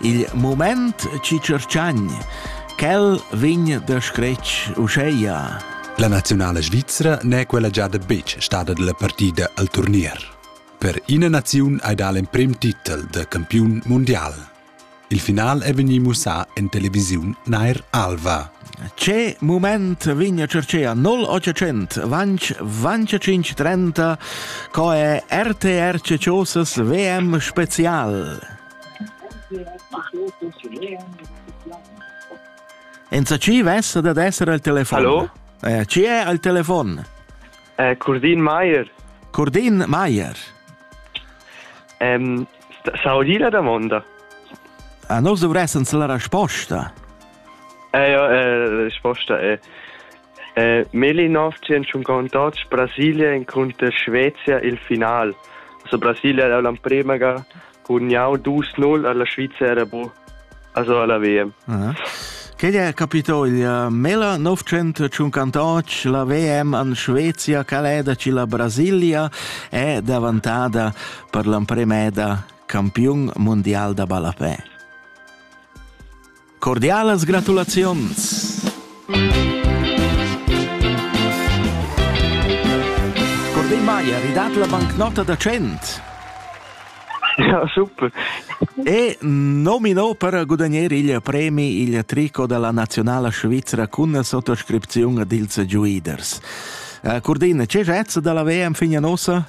Il moment ci cercagn, quel vegn da scretg uscheia. La nazionala svizzera n'è quella giada betg stada dalla partida al turnier. Per ina naziun hai dà l'emprim titel da campiun mondial. Il final è vegnì mussà en televisiun Nair Alva. Ce moment vigna cercea 0800 vanch vanch 30 co è RTR Ciosas WM Spezial. Enzatgi vessa dad esser al telefon. Hallo? Eh, chi è al telefon? Eh, Curdin Maier. Curdin Maier. Um, sa o la domanda? Ah, eh, noi dovressens la risposta. Eh, ja, eh, la risposta è... Melinov tschintg contouts Brasilia encunter Svezia il final. Also Brasilia era l'empremaga cun jau 2-0 alla Svizzera era bu also alla WM. Uh -huh. Quel è capito il uh, Mela 958, la VM an Svezia, caleda ci la Brasilia, è davantata per l'empremeda campion mondial da ballapè. Cordialas gratulaziuns! Curdin Maier, i dat la bancnota da 100. Ja, super. E nomino per gudagnare il premi il trico della nazionale svizzera con la sottoscrizione dels Giuiders. Uh, Curdin, c'è jazz dalla VM figna nossa?